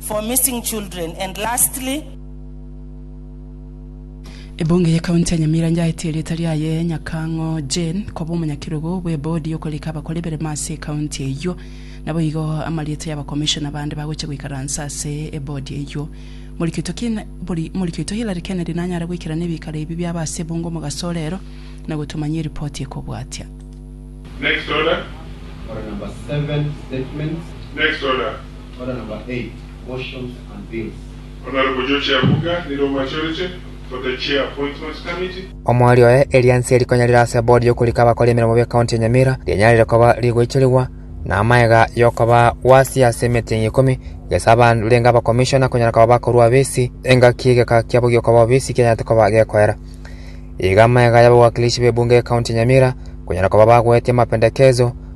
for missing children and lastly, Ebunge ye county ya Nyamira nyaetie erieta riaye Nyakang'o Jane koba omonyakerogo bwe bodi yokorika abakora eberemo ase ecounty eyio. Naboigo amarieta ya abacommissioner bande bagochia goikaransa ase ebodi eyio. Morikioto Hillary Kennedy nanyare goikerania ebikaro ebi biabo ase ebunge omogaso orero na gotomanyia eripoti ekobwatia. Next order. Order number seven, statements. Next order. Order number eight, Motions and Bills. Honourable George Abuga nere omachorete for the Chair Appointments Committee. Omori oye erianse rikonyarire ase bodi yokorika abakora emeremo be county ya Nyamira rianyarire koba rigoicherigwa na amaega yokoba wasi ase emetingi ikomi gesa abarenge aba commissioner konyara koba bakorwa obisi engaki egeka kiabo giokoba obisi kianyarete koba gekoera iga amaega y'abawakilishi b'ebunge y'ecounty ya Nyamira konyara koba bagoetie amapendekezo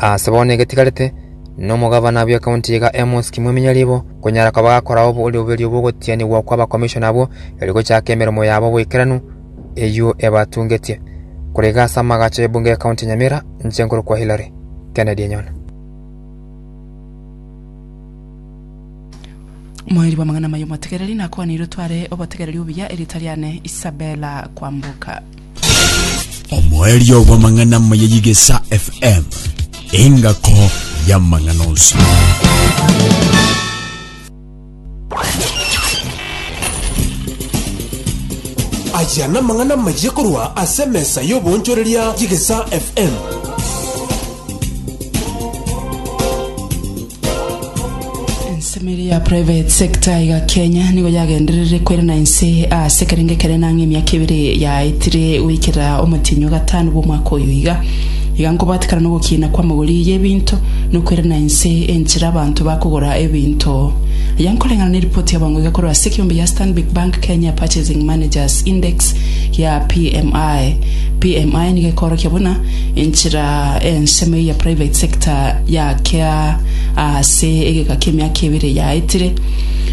Aase bono egetigarete, nomogavana bwe county iga Amos Kimwemia Ribo, konyara koba gakora oborio bw'ogotianigwa kwa abakomishona abwo, erio gochaaka emeremo yabo boikeranu, eyio ebatungetie. Korega ase amagacho y'ebunge ya county ya Nyamira, inche nkorokwa Hilary Kennedy Enyona. Moeri bw'amang'ana amaya omotegereri, nakwaneire otware obotegereri obuya, erieta riane Isabella Kwamboka. omoerio bw'amang'ana amaya y'Igesa FM, engako y'amang'ana onsi. Aya namang'ana amaya korwa ase emesa y'oboonchoreria y'Igesa FM. ensemeri ya private sector iga kenya nigo yagenderere kwerana inse ase kerenge kere nang'e emiaka ebere yaetire goikera omotinyo gatano bw'omwaka oyo iga iga nkobatikana n'ogokina kw'amagori y'ebinto nokwerana inse enchera abanto bakogora ebinto ya nkoreng'ana na eripoti yabango iga korwa ase ekiombe ya stanbic bank kenya purchasing managers index ya pmi pmi nigo ekorokia buna Enchera ensemo eyia private sector yaakea aase egeka ki'emiaka ebere eyaetire,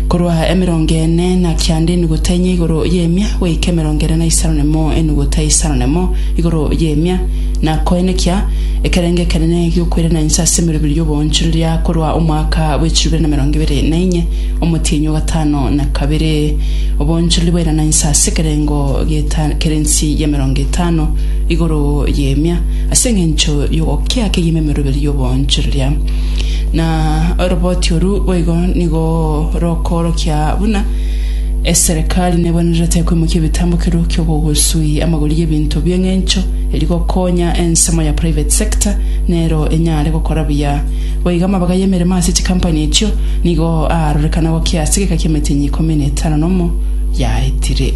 korwa emerongo ene na kianda enugute enye igoro y'emia goika emerongo ene na isano nemo enugute isano nemo igoro y'emia, na koenekia ekerengo ekenene gi'okoirana inse ase emeroberi y'oboonchoreria korwa omwaka bw'echilifu bibere na emerongo ebere na inye, omotienyi o gatano na kabere. Oboonchoreria bwairana inse ase ekerengo geta kere ensi y'emerongo etano. igoro y'emia, ase engencho y'ogokia kegima emeroberio y'oboonchoreria. Na oroboti oru boigo nigo rokoorokia buna eserekari nebwenerete koimokia ebitambo keru ki'ogogosui amagori y'ebinto bi'engencho eri gokonya ensemo ya private sector nero enyare gokora buya. Boigo amabaga y'emeremo ase chikampani echio nigo aarorekana gokia ase egeka ki'emetienyi ikomi na etano nomo yaetire.